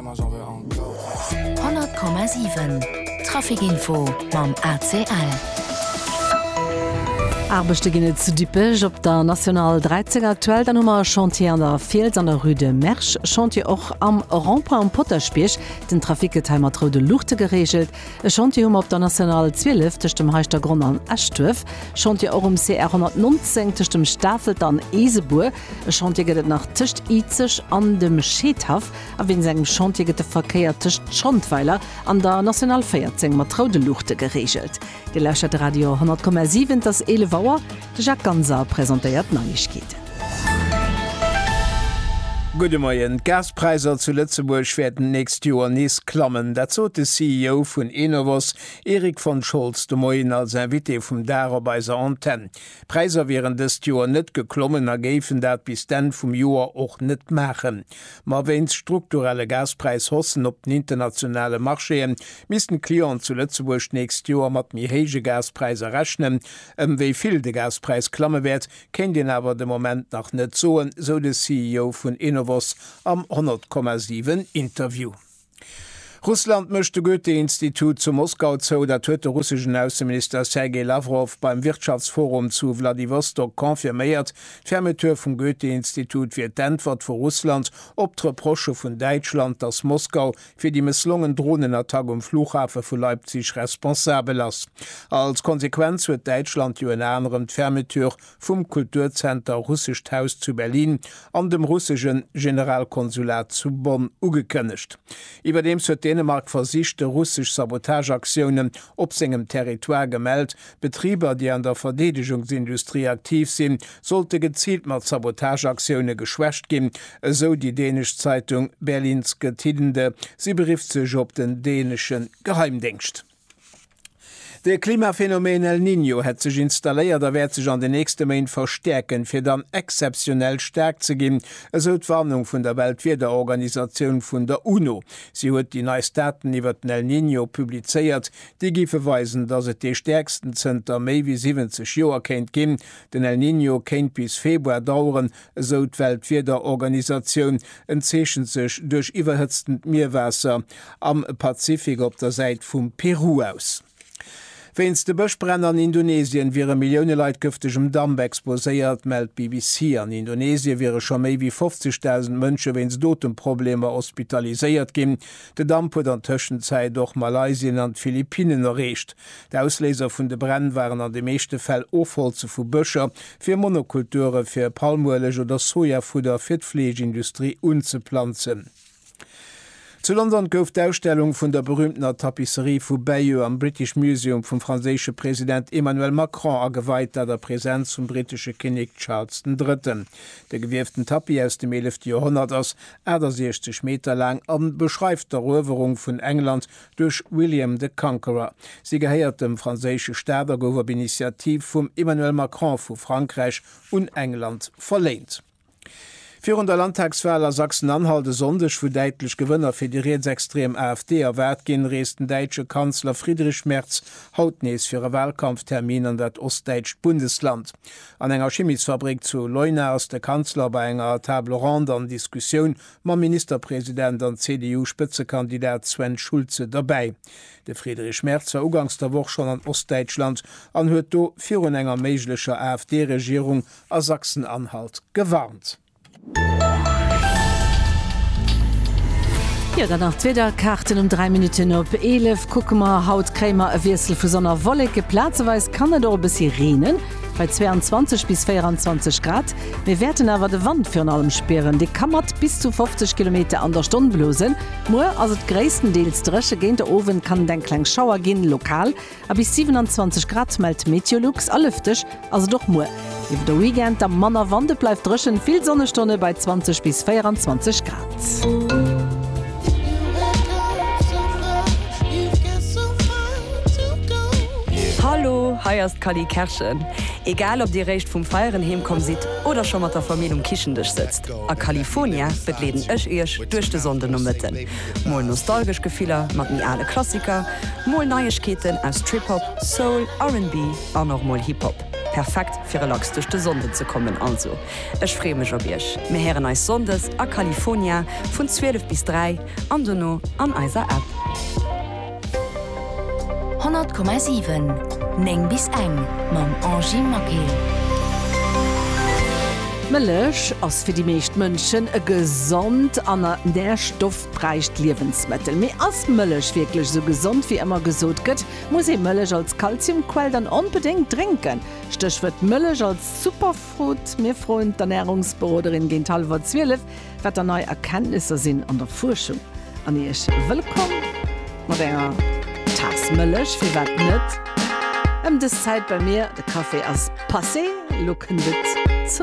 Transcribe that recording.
100,7 Traficinfo mam ACL. Aarbechte ginn et zu Dippech op der National 13 aktuell. Dann hu mer e Chantier an der Fiels an der Rue de Mersch. Chantier och am Rond-point um Potaschbierg. Den Trafic gëtt hei mat roude Luuchte gereegelt. E Chantier hu mer op der National 12 tëscht dem Heischtergronn an Eschduerf. Chantier och um CR 119 tëscht dem Stafelt an Eesebuer. E Chantier gëtt et nach tëscht Izeg an dem Scheedhaff. A wéinst engem Chantier gëtt de Verkéier tëscht Schondweiler an der National 14 mat roude Luuchte gereegelt. Dir lauschtert de Radio 100,7, et ass 11 Auer. De Jacques Ganser presentéiert d'Neiegkeeten. Gudde Moien. D'Gaspräisser zu Lëtzebuerg wäerten d'nächst Joer nees klammen. Dat sot de CEO vun Enovos, Erik von Scholz, de Moien als Invité vum Dag op eiser Antenn. D'Präisser wieren dëst Joer net geklommen a géifen dat bis d'Enn vum Joer och net maachen. Ma wéinst strukturelle Gaspräishaussen op den internationale Marchéë missten d'Clienten zu Lëtzebuerg d'nächst Joer mat méi héije Gaspräisser rechnen. Ëm wéi vill de Gaspräis klamme wäert, kéint een awer de Moment nach net soen, sou de CEO vun Enovos am 100,7 Interview. Russland mécht de Goethe-Institut zu Moskau zou, dat huet de russeschen Ausseminister Sergei Lawrow beim Wirtschaftsforum zu Wladiwostok confirméiert. D'Fermeture vum Goethe-Institut wier d'Äntwert vu Russland op d'Reprochë vun Däitschland, datt Moskau fir déi mësslongen Dronenattack um Flughafe vu Leipzig responsabel ass. Als Konsequenz huet Däitschland jo ënner anerem d'Fermeture vum Kulturzenter Russescht Haus zu Berlin an dem russesche Generalkonsulat zu Bonn ugekënnegt. Iwwerdeems huet Dänemark versichte russesch Sabotageaktiounen op sengem Territoire gemellt. Betriber, déi an der Verdeedegungsindustrie aktiv sinn, sollte geziilt mat Sabotageaktioune geschwächt ginn, esou déi dänesch Zeitung Berlingske Tidende. Si berifft sech op den dänesche Geheimdéngscht. De Klimaphänomen El Niño hätt sech installéiert a wäert sech an den nächste Méint verstäerken, fir dann exzeptionell staark ze ginn, esou d'Warnung vun der Weltwiederorganisatioun vun der UNO. Si huet déi neist Daten iwwert den El Niño publizéiert, déi géife weisen, datt et dee stäerksten zënter méi wéi 70 Joer kéint ginn. Den El Niño kéint bis Februar daueren, Esou d'Weltwiederorganisatioun en zeechent sech duerch iwwerhëtztend Mierwaasser am Pazifik op der Säit vum Peru aus. Wéinst de Bëschbränn an Indonesien wiere Millioune Leit gëftegem Damp exposéiert, mellt d'BBC. An Indonesie wiere scho méi wéi 50.000 Mënsche wéinst Otemprobleemer hospitaliséiert ginn. De Damp huet an Tëschenzäit och Malaysien an d'Philippinnen erreecht. D'Ausléiser vun de Bränn waren an de meeschte Fäll Ofholze vu Bëscher fir Monokulture fir Palmueleg oder Sojafudder fir d'Fleeschindustrie unzeplanzen. Zu London gouf d'Ausstellung vun der berüümtener Tapisserie vu Bayeux am British Museum vum franséische President Emmanuel Macron ageweit, dat a Presenz vum brittesche Kinnek Charles den Drëtten. De gewieften Tapis aus dem eelefte Joerhonnert ass 68 Meter laang a beschreift d'Eruewerung vun England duerch William the Conqueror. Si gehéiert dem franséische Staat a gouf op Initiativ vum Emmanuel Macron vu Frankräich un England verléint. Virun der Landtagswal a Sachsen-Anhalt e Sonndeg, wou däitlech Gewënner fir déi rietsextrem AfD erwaart ginn, reest den däitsche Kanzler Friedrich Merz haut nees fir e Walkampftermin an dat ostdäitscht Bundesland. An enger Chimisfabrik zu Leuna ass de Kanzler bei enger Table ronde an Diskussioun mam Ministerpresident an CDU-Spëtzekandidat Sven Schulze derbäi. De Friedrich Merz war ugangs der Woch schonn an Ostdäitschland an huet do virun enger méiglecher AfD-Regierung a Sachsen-Anhalt gewarnt. Jo, dann nach d'Wiederkaarten um 3 Minutten op 11 kucke mer. Haut kréie mer e Wiessel vu Sonn a Wolleke, plazeweis kann et och e bëssi reenen. Bei 22 bis 24 Grad. Mir wäerten awer de Wand virun allem spieren, dee ka mat bis zu 50 Kilometer an der Stonn blosen. Muer ass et gréisstendeels dréche, géint de Owend kann et eng kleng Schauer ginn, lokal. A bis 27 Grad mellt Meteolux. A lëfteg ass et och muer. Iwwer de Weekend da manner Wand, et bleift dréchen, vill Sonnestonne bei 20 bis 24 Grad. Hallo, hei ass d'Cally Kerschen. Egal ob dir réischt vum Feieren heem komm sidd oder scho mat der Famill um Kichen-Dësch sëtzt, a California begleeden ech iech duerch de Sonndenomëtten. Mol nostalgesch Gefiller mat méi ale Klassiker, mol Neiegkeeten aus Trip-Hop, Soul, RnB an och mol Hip-Hop. Perfekt fir relax duerch de Sonnden ze kommen also. Ech freeë mech op iech. Mir héieren eis Sonndes a California vun 12 bis 3 an dono an eiser App. 100,7 9 bis eng mam Angie Maquet. Mëllech ass fir déi meescht Mënschen e gesond an nährstoffräicht Liewensmëttel. Mee ass Mëllech wierklech esou gesond wéi ëmmer gesot gëtt? Muss ee Mëllech als Kalziumquell dann onbedéngt drénken? Stéchwuert Mëllech als Super. Foodprot, Mir froen d'Ernärungsberoderin géint hallwer 12, wat der nei Erkenntnisser sinn an der Fuerschung. An Iech wëllkomm mat enger Taass Mëllech, firwat net, ëm dës Zäit bei mir. De Café ass passé, elo kënnt et zum.